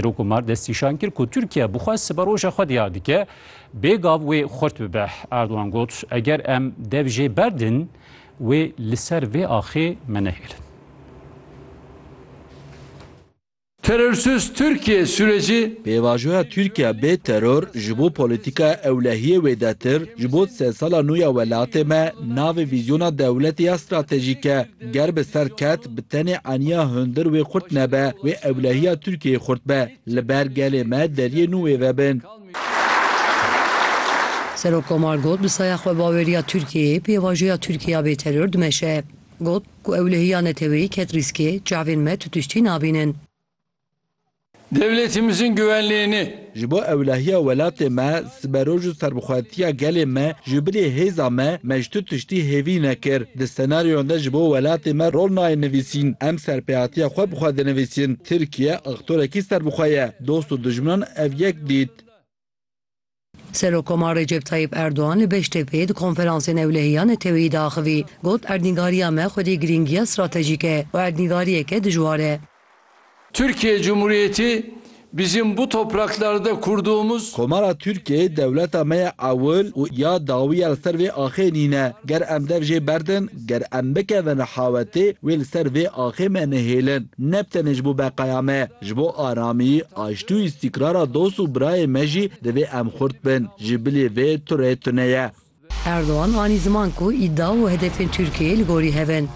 Rokumar destnîşan kir ku Tirkiye bi xwe siberoja xwe diyar dike, bê gav wê xurt bibe. Erdogan got, Eger em dev jê berdin, wê li ser vê axê me nehêlin. Terörsüz Türkiye süreci. Pêvajoya Tirkiye bê teror ji bo polîtîkaya ewlehiyê wêdetir, ji bo di sedsala nû ya welatê me navê vîzyona dewletê ya stratejîk e. Ger bi ser ket, bi tenê eniya hundir wê xurt nebe, wê ewlehiya Tirkiyeyê xurt be. Li ber gelê me deriyê nû wê vebin. Serokkomar got, bi saya xwebaweriya Tirkiyeyê pêvajoya Tirkiya bê teror dimeşe. Got, Ku ewlehiya neteweyî ket rîskê, çavên me tu tiştî nabînin. Devletimizin güvenliğini. Ji bo ewlehiya welatê me, siberoj û serbixwetiya gelê me ji bilî hêza me, me ji tu tiştî hêvî nekir. Di senaryoyan de ji bo welatê me rol nayê nivîsîn. Em serpêhatiya xwe bi xwe dinivîsin. Tirkiye aktorekî ser bi xwe ye. Dost û dijminan ev yek dît. Serokkomar Recep Tayyîp Erdogan li Beştepê di Konferansê Newlehiya Neteweyî de axivî, got, Erdnîgariya me xwedî girîngiya stratejîk e û erdnîgariyeke dijwar e. Türkiye Cumhuriyeti bizim bu topraklarda kurduğumuz. Komara Tirkiyê dewleta me ya ewil û ya dawî ya li ser vê axê nîne. Ger em dev jê berdin, Ger em bikevin hawetê, wê li ser vê axê me nehêlin. Ne bi tenê ji bo beqaya me, ji bo aramiyî, aştî û îstîkrara dost û birayê me jî divê em xurt bin. Ji bilî vê turê tune ye. Erdogan anî ziman ku îdia û hedefên Tirkiyeyê li gorî hev in.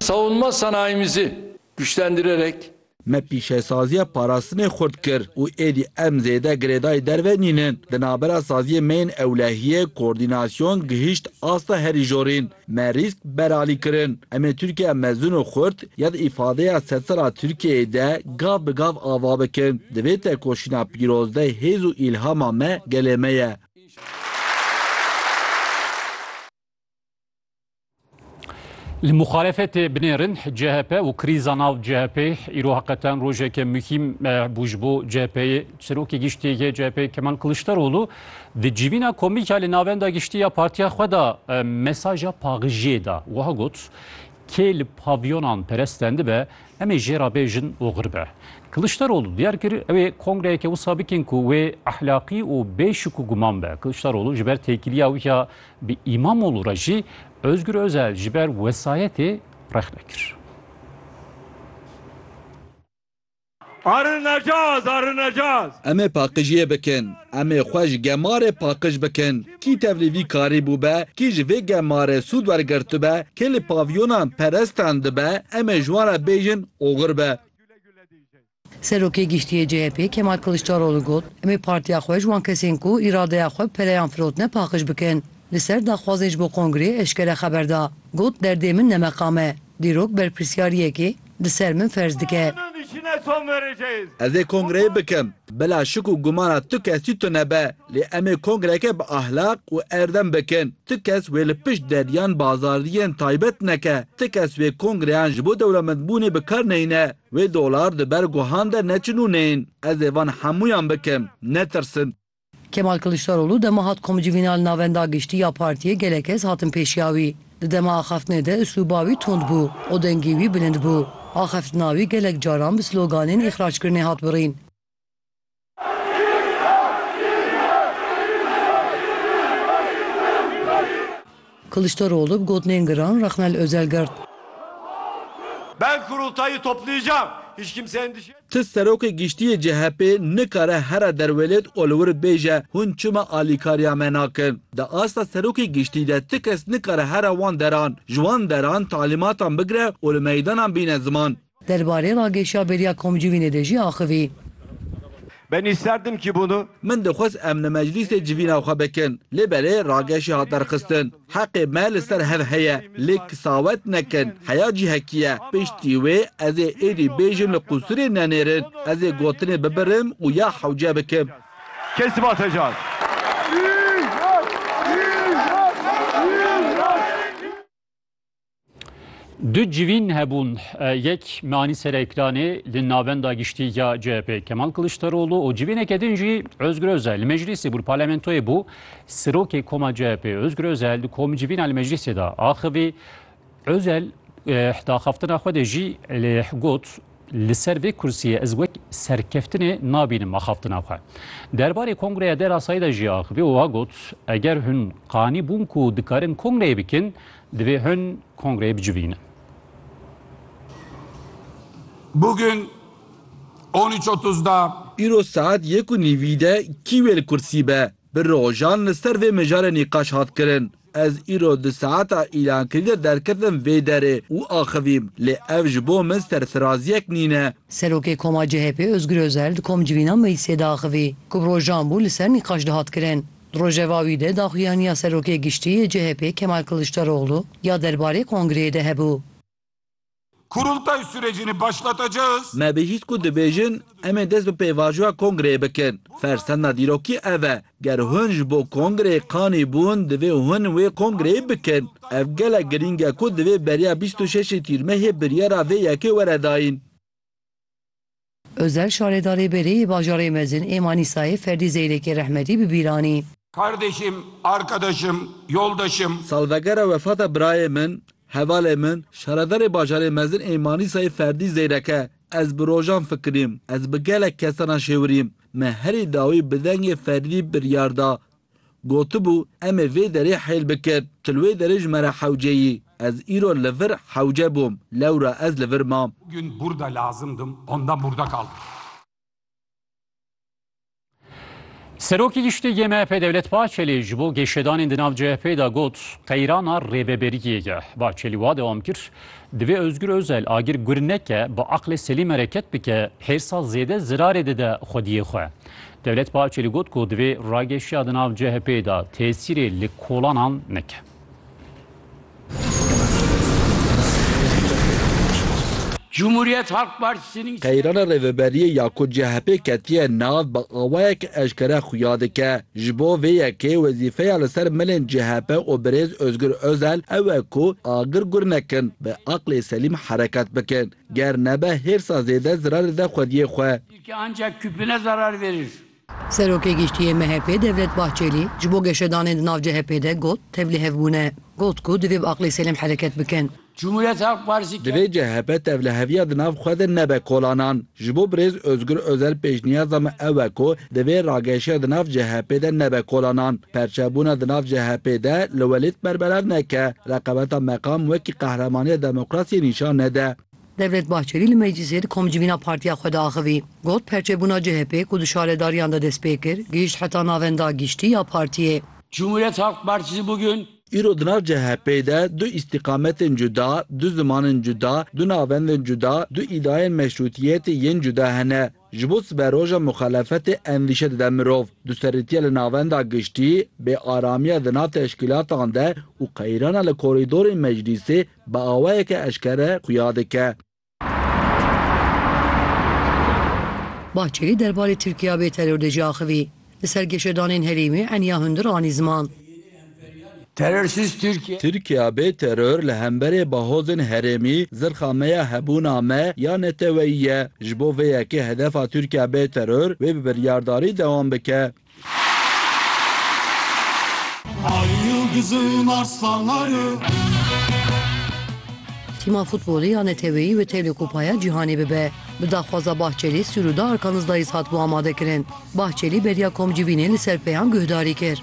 Savunma sanayimizi Güçlendirerek. Me pîşesaziya parastinê xurt kir û êdî em zêde girêdayî derve nînin. Di navbera saziyê me yên ewlehiyê, koordînasyon, gihîşt asta herî jorîn. Me rîsk beralî kirin. Em ê Tirkiyeya mezin û xurt ya di îfadeya sedsala Tirkiyeyê de gav bi gav ava bikin. Di vê tekoşîna pîroz de hêz û îlhama me gelê me ye. Li muxalefetê binêrin CHP û krîza nav CHP'ê îro heqeten rojeke muhîm bû ji bo CHP'yê. Serokê giştî yê CHP'yê Kemal Kiliçdaroglu di civîna komîka li navenda giştî ya partiya xwe de mesaja paxijiyê da. Wiha got, Kê li pavyonan peresten dibe em ê jê re bêjin û xir be. Kiliçdaroglu diyar kir ew ê kongreyeke wisa bikin ku wê ehlaqî û bê şik û guman be. Kiliçdaroglu ji ber têkiliya wî ya Bi Îmamoğlu re jî Ozgur Ozel ji ber wesayetê rexne kir. Arinecaz, arinecaz. Em ê paqijiyê bikin. Em ê xwe ji gemarê paqij bikin. Kî tevlî vî karî bûbe, kî ji vê gemarê sûd wergirtibe, kê li pavyonan perestan dibe, em ê ji wan re bêjin oxir be. Serokê Giştî yê CHP'ê Kemal Kiliçdaroglu got, Em ê partiya xwe ji wan kesên ku îradeya xwe bi pereyan firotine paqiş bikin. Li ser daxwazên ji bo kongreyê eşkere xeber da. Got, Derdê min ne meqam e. Dîrok berpirsyariyekê li ser min ferz dike. Ez ê kongreyê bikim. Bila şik û gumana tu kesî tune be. Lê em ê kongreyeke bi ahlaq û erdem bikin. Tu kes wê li pişt deriyan bazariyên taybet neke. Tu kes wê kongreyan ji bo dewlemendbûnê bi kar neyne. Wê dolar di ber guhan de neçin û neyên. Ez ê van hemûyan bikim. Netirsin. Kemal Kiliçdaroglu dema hat komcivîna li Navenda Giştî ya Partiyê gelek kes hatin pêşiya wî. Di dema axaftinê de uslûba wî tund bû û dengî wî bilind bû. Axaftina wî gelek caran bi sloganên îxrackirinê hat birîn. Kılıçdaroğlu bi gotinên giran Raxmel Özel girt. Ben kurultayı toplayacağım. Hiç kimse endişe etmesin. Ti Serokê Giştî yê CHP'ê nikare here derwêlêt û li wir bêje hûn çima alîkariya me nakin. Di asta Serokê Giştî de ti kes nikare here wan deran, ji wan deran talîmatan bigire û li meydanan bîne ziman. Derbarê ragêşiya bêriya komcivînê de jî axivî. Ben isterdim ki bunu. Min dixwest em li meclîsê civîna xwe bikin, lê belê ragêşî hat derxistin. Heqê me li ser hev heye, lê kisawet nekin, heya cihekî ye. Piştî wê ez ê êdî bêjim li qûsirê nenêrin, ez ê gotinê bibirim û ya hewce bikim. Kesiba Tejar. Du civîn hebûn yek manî serekranê li navenda giştî ya CHP Kemal Kiliçdaroglu û civîneke din jî Özgür Özel li meclîsê bû parlamentoyê bû sirokê koma CHP Özgür Özel di komî civîna li meclîsê de axivî Özel daxaftina xwe de jî got Li ser vê kursiyê ez wek serkeftinê nabînim axaftina xwe. Derbarê kongreya Dera Sayî de jî axive û a got, Eger hûn qanî bûn ku dikarin kongreyê bikin, divê hûn kongreyê bicivînin. Bugün on üç otuzda. Îro saet yek û nîvî de kî wê li kursî be? Bi rojan li ser vê mijarê nîqaş hat kirin. Ez îro di saeta îlankirî de derketim vê derê û axivîm lê ev ji bo min serfiraziyek nîne. Serokê Koma CHP'ê Ozgur Ozel di komcivîna meclîsê de axivî ku bi rojan bû li ser nîqaş dihat kirin. Di rojeva wî de daxuyaniya Serokê Giştî yê CHP'ê Kemal Kiliçdaroglu ya derbarê kongreyê de hebû. Kurultay surecini başlatacağız. Me bihîst ku dibêjin em ê dest bi pêvajoya kongreyê bikin. Fersenda dîrokî ev e. Ger hûn ji bo kongreyê qanî bûn divê hûn wê kongreyê bikin. Ev gelek girîng e ku divê beriya bîst û şeşê Tîrmehê biryara vê yekê were dayîn. Ozel şaredarê berê yê bajarê mezin ê Manîsayê Ferdî Zeyrêkê Rehmetî bi bîr anî. Kardeşim, arkadaşım, yoldaşım. Salvegera wefata birayê min, hevalê min, şaredarê bajarê mezin ê Manîsayê Ferdî Zeyreke, Ez bi rojan fikirîm, ez bi gelek kesan a şêwirîm. Me herî dawî bi dengê Ferdî biryar da Gotibû, Em ê vê derê heyl bikin. Tu li wê derê ji me re hewce yî. Ez îro li vir hewce bûm. Lewra ez li vir mam. Bugün burda lazımdım, ondan burda kaldım. Serokê Giştî yê MHP'ê Dewlet Bahçelî ji bo geşedanên di nav CHP'ê de got, qeyrana rêveberiyê ye. Bahçelî wa dewam kir, Divê Ozgur Ozel agir gur neke, bi aqlê selîm hereket bike, hêrsa zêde zirarê dide xwediyê xwe. Devlet Bahçeli got ku divê rageşiya di nav CHP'ê de tesîrê li kolanan neke. Cumhuriyet Halk Partisi'nin Qeyrana Rêveberiyê ya ku CHP ketiye nav bi awayek eşkere xuya dike. Ji bo vê yekê wezîfeya li ser milên CHP û birêz Ozgur Ozel ew e ku agir gur nekin, bi aqlê selîm hereket bikin. Ger nebe hêrsa zêde zirarê de xwediyê xwe. Ke ancak küpüne zarar verir. Serokê Giştî yê MHP'ê Devlet Bahçelî ji bo geşedanên di nav CHP'ê de got tev li hev bûne. Got ku divê bi aqlê selêm hereket bikin. Cumhuriyet Halk Partisi ke. Divê CHP tevliheviya di nav xwe de nebe kolanan. Ji bo birêz Ozgur Ozel pêşniyaza me ew e ku divê rageşiya di nav CHP'ê de nebe kolanan. Perçebûna di nav CHP'ê de li welêt berbelav neke, reqebeta meqam wekî qehremaniya demokrasiyê nîşan nede. Devlet Bahçelî li meclîsê di komcivîna partiya xwe de axivî. Got, Perçebûna CHP'ê ku di şaredariyan de dest pê kir, gihîşt heta navenda giştî ya partiyê. Cumhuriyet Halk Partisi bugün. Îro di nav CHP'ê de du îstîqametên cuda, du zimanên cuda, du navendên cuda, du îdayên meşrûtiyetê yên cuda hene. Ji bo siberoja muxelefetê endîşe dide mirov, duserrîtiya li navenda giştî, bêaramiya di nav teşkîlatan de û qeyrana li korîdorên meclîsê bi awayeke eşkere xuya dike. Bahçelî derbarê Tirkiya bê teror de jî axivî. Li ser geşedanên herêmê eniya hundir anî ziman. Terorsiz Tirkiye. Tirkiya bê teror li hemberê bahozên herêmî zirxa me ya hebûna me ya neteweyî ye. Ji bo vê yekê hedefa Tirkiya bê teror wê bi biryardarî dewam bike. Tîma futbolê ya neteweyî wê tevlê Kupaya Cîhanê bibe. Bi daxwaza Bahçelî sûrûda Arkanizlayîs hatibû amadekirin. Bahçelî beriya komcivînê li ser peyan guhdarî kir.